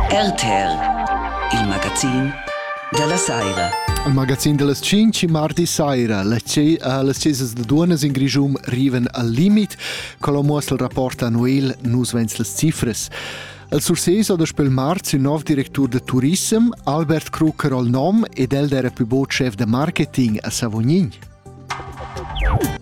RTR, il magazin dalla saira. Il magazin dallas 5 mardi saira. Las cesas da duonas in Grischum riven al limit. Quello muossel rapport annual nus vens las cifres. El surseso da spel marz il nov directur de turism, Albert Krucker al nom ed el era più bod chef de marketing a Savognin.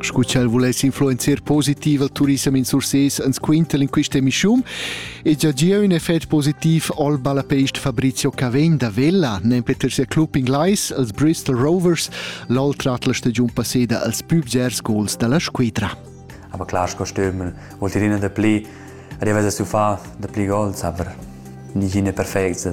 Scu ch'el vuless influenzer positiv al turissem in Sursés ans quintel in quista emischium e già gia ün effet positiv al ballapeist Fabrizio Cavegn da Vella, nempe ter sia club inglais als Bristol Rovers, l'al trat la stagiun passeda als pübgers gols da la squidra. Aber klar, Kostüm vuol dir innen da pli, arrivas a su fa da pli gols, aber nicht innen perfekt.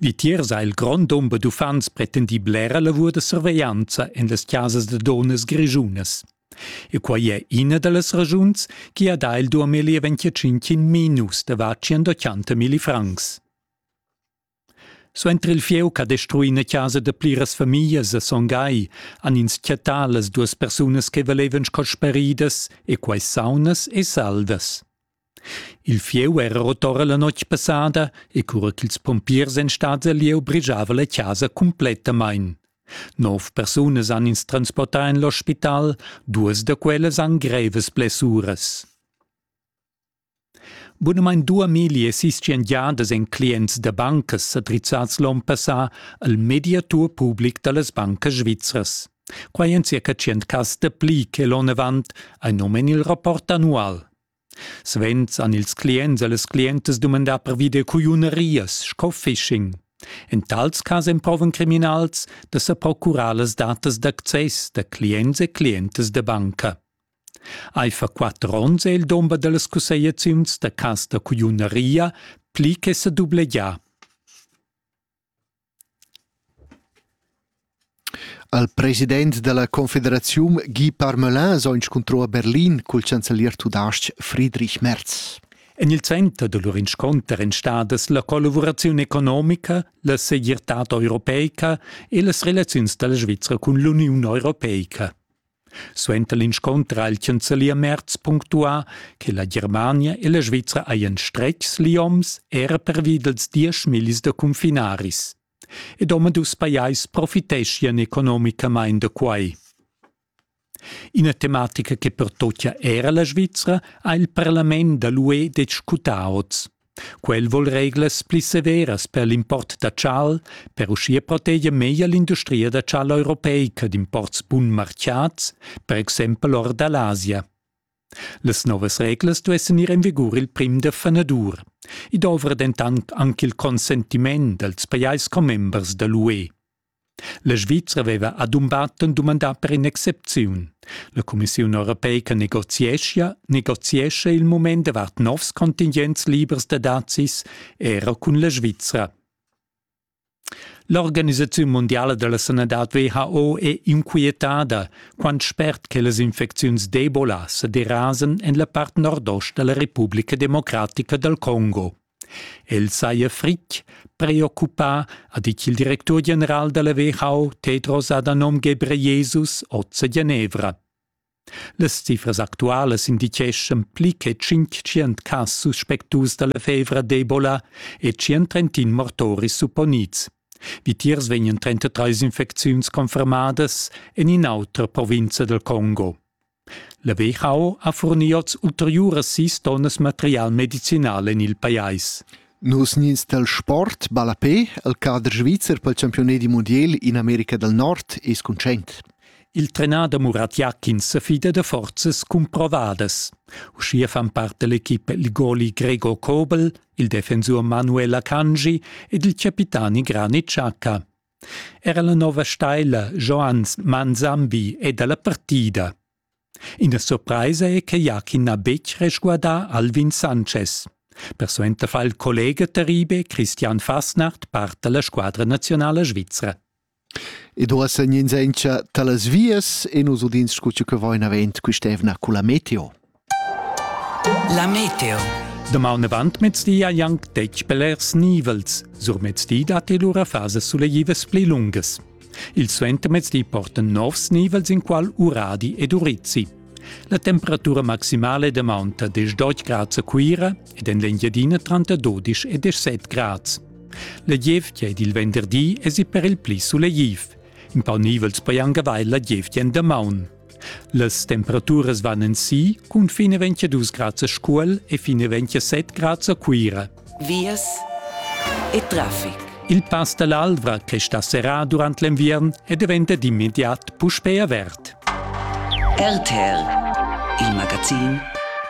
Vitiers ha il grond dumber d'uffants pretendì blera lavur da surveglianza en las chasas da dunnas grischunas. E quai è ina da las raschuns che ha dà il duamilli e venticinc minus davart centottanta francs. Suenter il fieu ch'ha destruì ina chasa da pliras famiglias a Son Gai han ins chattà las duas persunas che valevan sco speridas e quai saunas e salvas. Il fieu era rotora la notg passada e cura ch'ils pompiers ein stats el lieu brigiava la casa cumplettamain. Nov persunas han ins transportà en l'ospital, duas da quellas han grevas blessuras. Bunamain due miglie sischian giadas en clients da bancas sa drizzads l'onn passà al mediatur public da las bancas svizras. Quai en circa tschient cas dapli che l'onn avant, ein num en il rapport annual. Svent han ils clients e las clientas dumandà pervi da cugliunerias sco phishing. En tals cas emprovan criminals da sa procurar las datas d'access da clients e clientas da banca. Aifer quatter onns è il dumber da las cussegliaziuns da cas da cugliuneria pli che sa dublegià. Al president dalla confederaziun Guy Parmelin s'ho inscuntrò a Berlin cul chancelier tudas-ch Friedrich Merz. En il center da lur inscunter èn stadas la collavuraziun economica, la segirtad europeica e las relaziuns da la Svizra cun l'Uniun europeica. Suenter l'inscunter ha il chanzelier punctuà che la Germania e la Svizra hajan stretgs lioms era pervi dals diesch millis da cunfinaris. Ed omadus pajais profiteschian economicamain da quai. Ina tematica che pertochia era la Svizra ha il parlament da l'UE discutà oz. Quel vol reglas pli severas per l'import da chal, per uschia proteger meglier l'industria da chal europeica d'imports bunmarchiats, per exempel or da l'Asia. Las novas reglas duessan ir en vigur il prim da fanadur. I dovra dentant anche il consentiment dals pajais commembers da l'UE. La Svizra veva adumbatten dumandà per in'excepziun. La Cumissiun europeica negoziescha, negoziescha il mument davart novs contingents libers da dazis era cun la Svizra. L'organisaziun mondiala della sanadad WHO è inquietada quant spert che las infecziuns d'Ebola sa derasan en la part nordost della Repubblica Democratica dal Congo. El saja fritg preoccupà, ha ditg il directur general da la WHO Tedros Adhanom Ghebreyesus oz a Genevra. Las cifras actualas indicheschan pli che tschintschient cas suspectus da la fevra d'Ebola e tschient mortoris supponids. Vitiers vegnan 33 infecziuns confermadas en in'autra provinza dal Congo. La WHO ha furni oz ulteriuras sis tonnas material medicinal en il pajais. Nus nins dal sport ballapé, il cader svizzer pel campiunat du mondial in America del Nord es conscient. Il trenader Murat Jakin se fida da forzas cumprovadas. Uschia fan parte l'equipe il goli Gregor Kobel, il defensur Manuel Akanji ed il capitani Granit Xhaka. Era la nova steila Johannes Manzambi è dalla partida. Ina surpraisa è che Jakin n'ha betg resguardà Alvin Sanchez. Persuenter fa il collega Teribe Christian Fasnart part dalla squadra nazionala svizra. Ed ora segn in senza talas vias e nos udins scu che vain avent quist'evna culla meteo. La meteo. Damaun avant mezdi hai anc detg blers nivels. Sur mezdi datti lura fasas suleivas pli lungas. Il suentermezdi portan novs nivels in qual Uradi ed Urizzi. La temperatura maximale da maunta 10 grads a Cuira ed en l'Engiadina tranter 12 e 17 grads. La gievgia ed il venderdi esi per il pli suleiv. In pau nivels poi anche avair la gievgia en damaun. Las temperaturas van en si cun fin 22 grads a Scuol e fin 27 grads a Cuira. Vias e traffic. Il pass dall'Alvra che sta serrà durant l'enviern e diventa d'immediat puspei avert. RTL, il magazin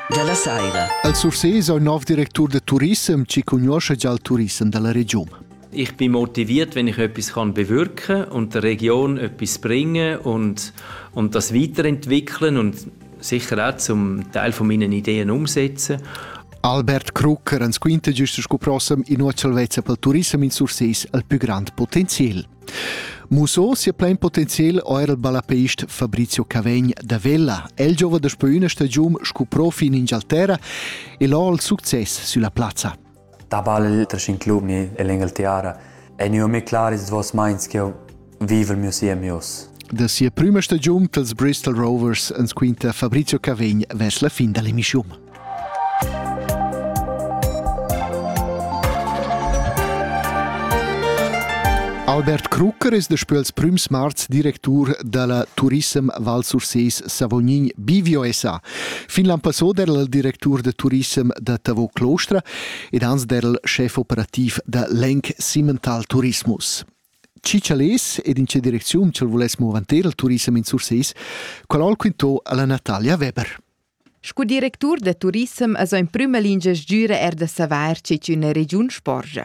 della Saira. Al Sursés è un nov directur de turissem ci conosce già il turissem della regione. Ich bin motiviert, wenn ich etwas kann bewirken und der Region etwas bringen und, und das weiterentwickeln und sicher auch zum Teil von meinen Ideen umsetzen. Albert Krucker ans quinta giusto sco prossem in nuotsal vezza pel turism in Surses al più grand potenzial. Muso sia plein potenzial o era il balapeist Fabrizio Cavegn da Vella. El giova da spo una stagiun sco profi in Inghilterra e là il succes sulla plazza. Da balla liters in club ni en l'Engalterra ei gnü mê clar ils duos meins ch'jeu vivel miu siem oz. Da sia prüma stagiun pels Bristol Rovers ans quinta Fabrizio Cavegn vers la fin da l'emissiun. Albert Krucker es daspö els prüms marz directur da la Turissem Val Surses Savognin Bivio SA. Fin l'an passò der'l directur de turissem da Tavo Clostra ed ans der'l chef operativ da l'Enc Simmental Tourismus. Cicciales ed in che direcziun c'el voless movanter il turissem in Surseis, qual al quintò alla Natalia Weber. Scu directur da turissem es in prüma lingia sgüra er da savair che üna regiun sporgia.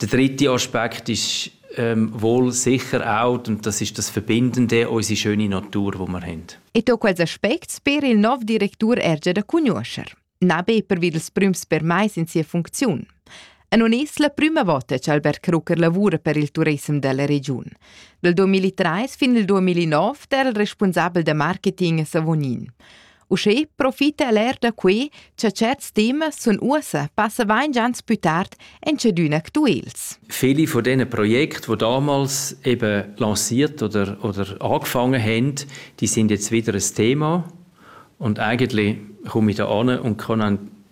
Der dritte Aspekt ist ähm, wohl sicher auch, und das ist das Verbindende, unsere schöne Natur, die wir haben. E to quels aspects per il nov directur erge da conoscer. Nebe per vid els prüms permais in sia funcziun. A non es la prüma vota che Albert Krucker lavura per il turism della regiun. Dal 2003 fin al 2009 era il responsabel da marketing a Savonin. Uschè profita el er da quei cha certs temas sun uossa passa vain gians pü tard en tschedün actuels. Viele von diesen Projekten, die damals eben lanciert oder, oder angefangen haben, die sind jetzt wieder ein Thema. Und eigentlich komme ich da an und kann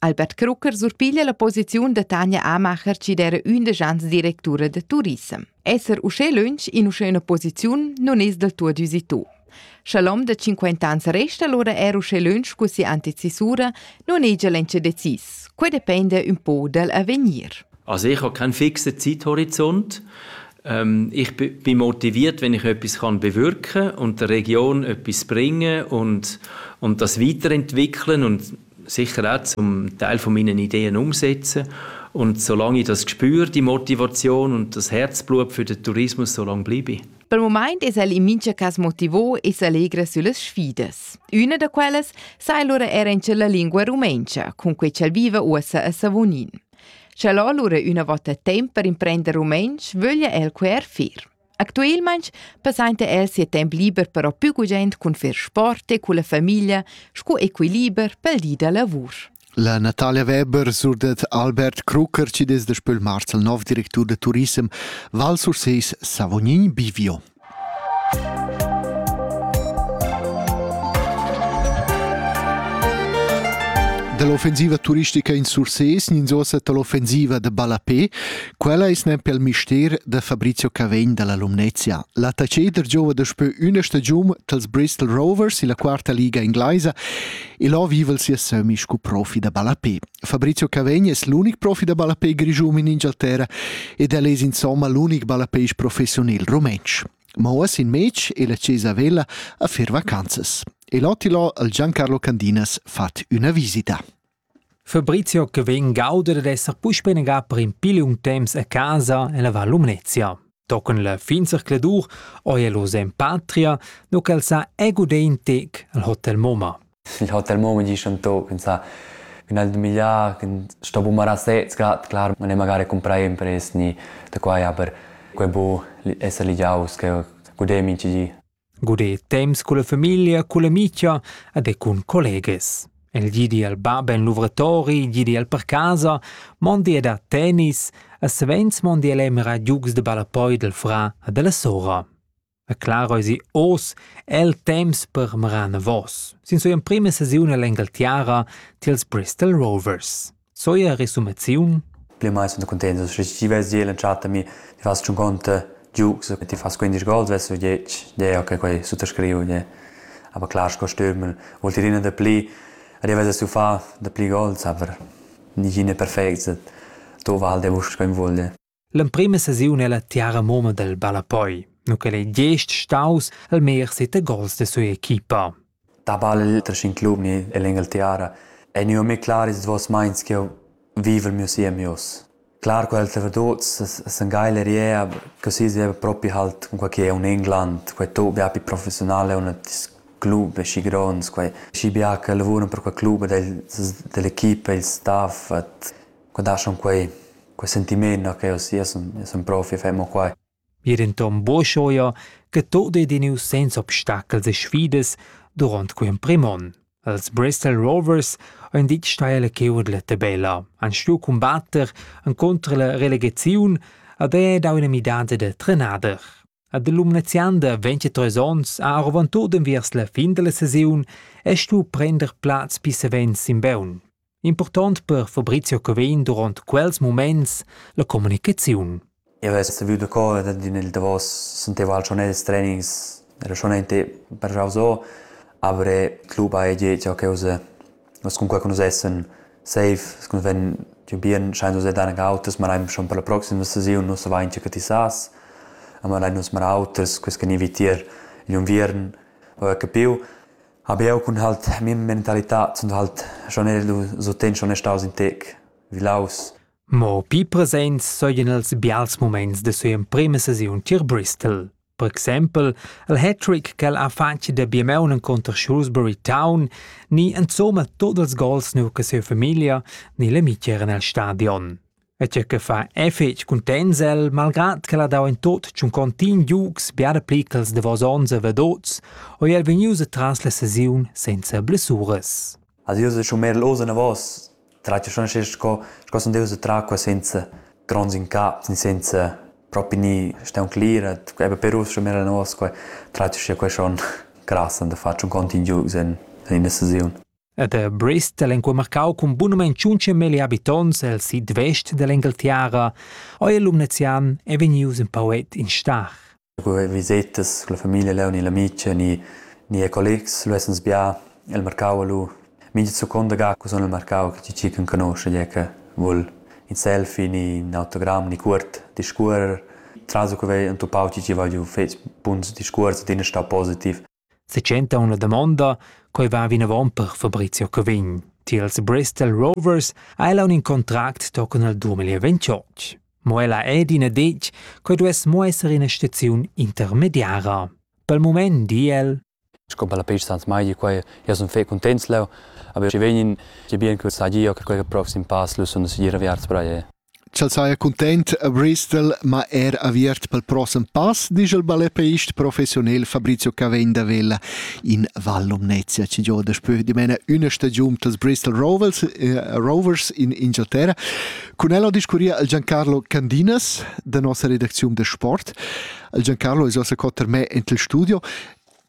Albert Krucker surpiglia la posiziun da Tanja Amacher, chi d'era ündesch ans directura da turissem. Esser uschè lönch in uschè üna posiziun non es del tuot üsi tu. Scha l'hom da 50 ans resta allora er uschè lönch cu si anticisura, non hegia l'entsche decis. Quai depende un po dal avegnir. Also ich habe keinen fixen Zeithorizont. Ähm, ich bin motiviert, wenn ich etwas kann bewirken und der Region etwas bringen und, und das weiterentwickeln und sicher auch zum Teil von meinen Ideen umsetzen. Und solange ich das Gespür, die Motivation und das Herzblut für den Tourismus so lange bleibe. Per moment es el in mincha cas motivo e s'allegra sulle sfidas. Una da quelle sa allora era in la lingua rumenca, con cui c'el vive ussa a Savonin. C'è allora una volta tempo per imprendere rumenc, voglia el quer fir. Actuelmaing passainta el sia temp liber però pü gugent cun fer sport e culla famiglia scu equiliber pel di da lavur. La Natalia Weber surdet Albert Krucker, ci des da Spöl Marzel, nov directur da turissem, Val Surseis Savognin Bivio. dall'offensiva turistica in Surses, ninzosa dall'offensiva de Balapé, Quella es gnanc pel mister da Fabrizio Cavegn da la Lumnezia. L'attacheder giova daspö üna stagiun tals Bristol Rovers illa quarta liga inglaisa e là viva sia sömi scu profi da ballapé. Fabrizio Cavegn es l'unic profi da ballapé grischun in Ingialterra ed el es insomma l'unic ballapéisch professiunel rumentsch. Ma uoss in mec e la Cesa Vella a fer vacanzas. E l'Ottilo al Giancarlo Candinas fat üna visita. Fabrizio che vegn gauder ed esser puspei negà per in pil liung temps a casa en la Val Lumnezia. Tochen la fin zercladur oi el oz en patria, no ch'el sa egudein tec al Hotel Moma. Il Hotel Moma dice un to, pensa, che nel migliar, che sto bumarà sez grad, clar, non è magari comprare impressni da qua, ja, per quei bo esser ligiaus, che gudem in ci Guder temps culla famiglia, culla micha ed e cun collegas. El gidi al bab en luvratori, gidi al per casa, mondi ed a tennis, e savens mondi el emira giugs de ballapoi del fra e della sora. E claro esi os el temps per meran vos, sin sua prima sesiun all'Engaltiara tiels Bristol Rovers. Co è la resumaziun? Pli mai sunt cuntents che ti vesi e l'entschatta mi ti fas tschun conte giugs che ti fas 15 gol vess u 10 deo che quei suttascriu je aber klar sco stürmel vuol dir ina da pli arrivas a sufar da pli gols aber nigine perfect to val de vusch quem vuol L'emprema sesiun ella tiara moma dal ballapoi, nu ch'el ei gest staus almer seta gols da sua equipa. Da ballel tra scin club ni ell'Engel Tiara ei gnü mê clar ils duos meins ch'jeu vivel miu siem ius. Clar co els reverdots s'engaila riea che si sieva propi halt cun quai che è un England, quai to bia più professionale un club schi gronds, quai schi bia che lavura per quel club ed el dell'equipa, il staff, Qua daschan quei, quei sentiment no che uss io sun, io sun profi e fai mo quai. Ir entom boschoia che tot ei diniu senza obstacels e sfidas duront quei emprim onn. Els Bristol Rovers ein ditg stai la cheurdletta bella, han stuiu combatter encontro la relegaziun ad è dau ina midada da trenader. Ad l'Umnezianda 23 onns ha arvon tot enviers la fin della saisiun e stu prender plaz pi savens sin beun. Impurtont per Fabrizio Cavegn durant quels muments la communicaziun. Io vess viu de cor d'in il davos senteva al schon els trainings era schon ente per jau so aber club ha je ciò che use was comunque con essen safe con wenn die bien scheint uns dann autos ma rein schon per la proxima saison non sa vain che ti sas aber rein uns mal autos quest can evitir in inviern ho capiu Hab jeu cun halt mia mentalità zunt halt schon era lu suenter schon staus in tec vilaus. Mo pli presents seigien els bials muments da sia emprema sesiun tier Bristol. Per exempel il hat-trick ch'el ha fatg da biemaun encunter Shrewsbury Town ni insomma tot ils gols nu che sia famiglia ni l'amici eran el stadion. e tgei che fa è fetg cuntents el, malgrad ch'el ha dau in tot tschun contini giugs biara pli ch'els davos onns e vedots, o er vegnius atras la sesiun senza blessuras. Also io se schon mehr los ne was, traccia schon sche sco sco son deus tra qua senza grons in cap, senza propri ni steun clirat, eben per us schon mehr ne was qua, traccia sche qua schon krass an da faccio un contini giugs in in la sesiun. Ed er Brest el enqual marcau cun bunamain tschuntsche milli habitonts el sid vest dell'Engalterra o il Lumnezian è vegnius in pauet in star. Cu visetas con la famiglia leu ni l'amica ni ni e collegs lu essens bia el marcau lu mincha seconda ga cu sun el marcau chi chi can conosce gie che vul in selfie ni in autogramm ni cuort discuorrer. Traso che vei entupau chi chi va giu fetg buns discuors ed in è stau positiv. Setschentaun la damonda, quei va vinavon per Fabrizio Cavegn. Tiels Bristol Rovers ha ella un contract tochen al 2028. Mo ella è d'ina detg, quei duess mo esser ina staziun intermediara. Pel moment di el Sco per la pista Sans Maigi, quai io sun fe cuntents leu, aber ci vegnin ci bien quel sagia che quel proxim pass lu sun sicir aviarts per aí. ch'el saja cuntent a Bristol, ma er aviert pel prossem pass, disch il balletpeist professionel Fabrizio Cavegn da Vella in Val Lumnezia, chi gioa daspö dimena üna stagiun pels Bristol Rovers, eh, Rovers in Inghilterra. Cun el ho discurria il Giancarlo Candinas da nossa redacziun da sport. Il Giancarlo es ossa co ter me int il studio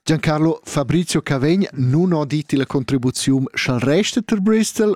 Giancarlo Fabrizio Cavegn nun ho dit la contribuziun scha'l resta ter Bristol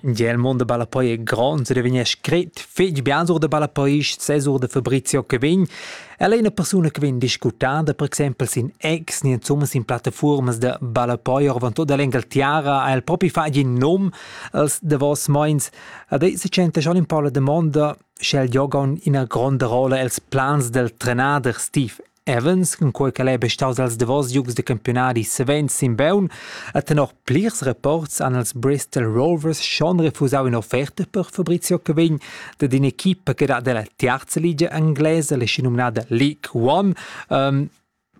Gia il mund da ballapoi è grond e vegn scret fetg bien sur da ballapoist, sesur da Fabrizio che vegn. El è una persona che vegn discutada, per exempel sin ex, ni insomma sin plattaformas da ballapoi or van tutta l'Engalterra, ha el proprio fatto in nome als davos meins. Ad ei se centa schon un po la domanda, sche il yoga ha una grande rolla els plans del trenader Steve Evans, cunquei ch'el ei be staus els davos giugs da campiunadi savens sin beun, ha tenor plirs rapports han els Bristol Rovers schon refusau in'offerta per Fabrizio Cavegn dad in'equipa che dat dalla tiarza ligia inglesa, la schinumnada League One. Um,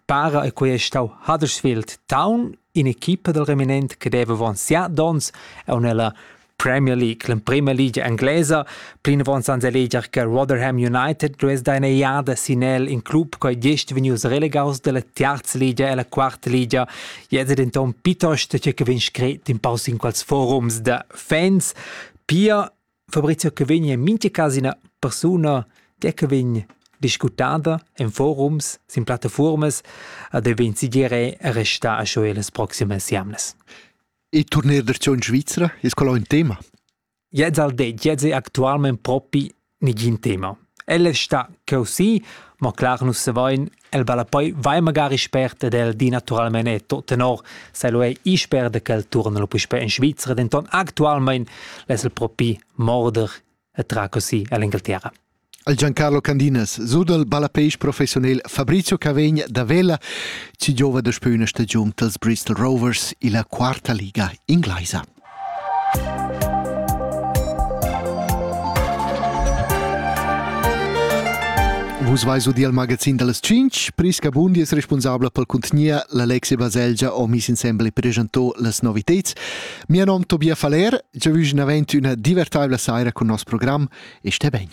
para e quei è stau Huddersfield Town, in'equipa dal reminent che deva avon siat donns e nella Premier League, l'emprema ligia inglesa. Plinavon sans eleger che Rotherham United duess da ina iada sin el in club coi gest vegnius relegaus dalla terza ligia e la quarta ligia. Jetzt denton piuttosto che che vegn scret in paus in quels forums da fans. Pia Fabrizio che vegn in mincha cas ina persuna der che vegn discutada en forums, sin plattformas, a de vegn sigire resta a scho las proximas jamnas. E turner dertgion Svizra es quella ün tema? Jez al det, jez è actualment propi nigin tema. El è sta così, ma clar nus se vain, el vale poi vai magari spert ed el di naturalmente to tenor se lo è isperde che el torna lo puspè in Svizra, denton actualment l'es el propi morder e tra così all'Inghilterra. al Giancarlo Candinas sudal ballapeisch professiunel Fabrizio Cavegn da Vella ci giova da spüna stagiun dals Bristol Rovers illa quarta liga inglaisa. Vus vais udi al magazin dals 5, Prisca Bundi es responsabla pel cuntgnia, l'Alexi Baselgia ho mis insembel e presentò las noviteds. Mia nom Tobias Faller, jeu vus naven üna divertaivla saira cun nos program e sté ben.